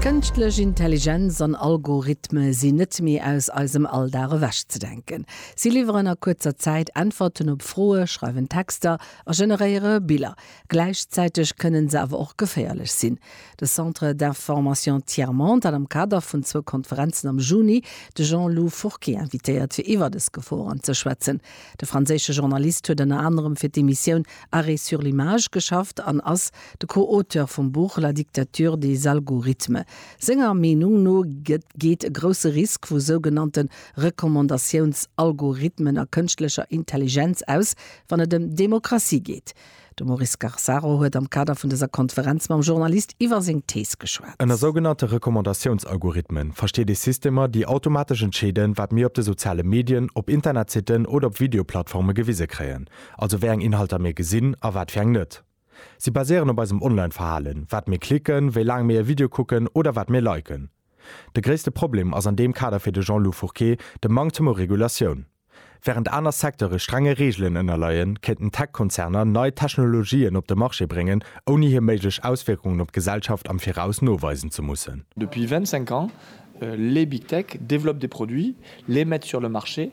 Kënschtlech Intelligenz an Algorithme sinn net méi aus eisem Alldag ewech ze denken. Si liwweren a kuerzer Zäit Äntwerten op Froe, schreiwen Texter a generéiere Biller. Gläichzäiteg kënnen se awer och geféierlech sinn. De Centre d'Information Tiers-Monde hat am Kader vun zwou Konferenzen am Juni de Jean-Lou Fourquet invitéiert, fir iwwer dës Geforen ze schwätzen. De franséische Journalist huet ënner anerem fir d'Emissioun Arrêt sur l'image geschafft an ass de Co-Auteur vum Buch La dictature des algorithmes. Senger Meenung no geet e grousse Risk vu sougenannte Recommandatiouns-Algorithmen a kënschtlecher Intelligenz aus, wann et ëm Demokratie geet. De Maurice Garsaro huet am Kader vun dëser Konferenz mam Journalist iwwer seng Thees geschwat. Ënner sougenannte Recommandatiouns-Algorithmen versteet ee Systemer, déi automatesch entscheeden, wat mir op de soziale Medien, op Internetsitten oder op Videoplattforme gewise kréien. also wéi eng Inhalter mir gesinn a wat fir eng net. Si baséieren op eisem Online-Verhalen, wat mir klicken, wéi laang mir e Video kucken oder wat mir liken. De gréisste Problem ass an deem Kader fir de Jean-Lou Fourquet de Manktem u Regulatioun. Während aner Secteure strenge Reegelen ënnerleien, kéinten Tech-Konzerner nei Technologien op de Marché bréngen, ouni hir méiglech Auswierkungen op d'Gesellschaft am Viraus noweisen ze mussen. Depuis 25 ans, les big tech développent des produits, les mettent sur le marché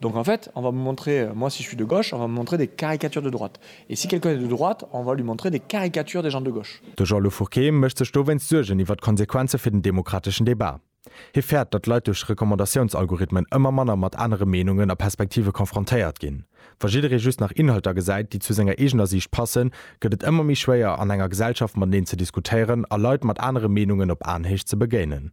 Donc en fait, on va me montrer, moi si je suis de gauche, on va me montrer des caricatures de droite. Et si quelqu'un est de droite, on va lui montrer des caricatures des gens de gauche. De Jean-Lou Fourquet mécht sech dowéinst Suergen iwwer d'Konsequenze fir den demokrateschen Debat. Hie fäert, datt Leit duerch Recommandatiouns-Algorithmen ëmmer manner mat anere Meenungen a Perspektive confrontéiert ginn. Wa jidderee just nach Inhalter gesäit, déi zu senger eegener Siicht passen, gëtt et ëmmer méi schwéier, an enger Gesellschaft mateneen ze diskutéieren a Leit mat anere Meenungen op Aenhéicht ze begéinen.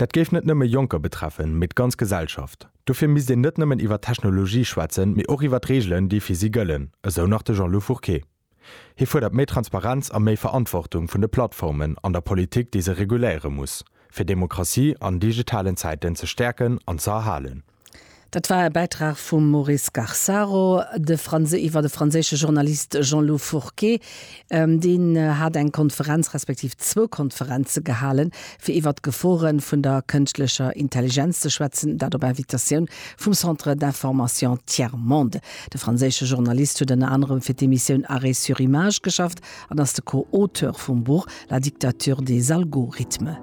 Dat géif net nëmme Jonker betreffen, mee d'ganz Gesellschaft. Dofir misst een net nëmmen iwwer d'Technologie schwätzen, mee och iwwer d'Reegelen, déi fir si gëllen, esou nach de Jean-Lou Fourqué. Hie fuerdert méi Transparenz a méi Verantwortung vun de Plattformen an der Politik, déi se reguléiere muss, fir Demokratie an digitalen Zäiten ze stäerken an ze erhalen. Dat war e Bäitrag vum Maurice Garsaro, de Franse iwwer de franséische Journalist Jean-Lou Fourquet. Deen hat eng Konferenz respektiv zwou Konferenze gehalen, fir iwwer d'Gefore vun der kënschtlecher Intelligenz ze schwätzen, dat op Invitatioun vum Centre d'information Tiers Monde. De franséische Journalist huet ënner anerem fir d'Emissioun Arrêt sur image geschafft an ass de Co-Auteur vum Buch La dictature des algorithmes.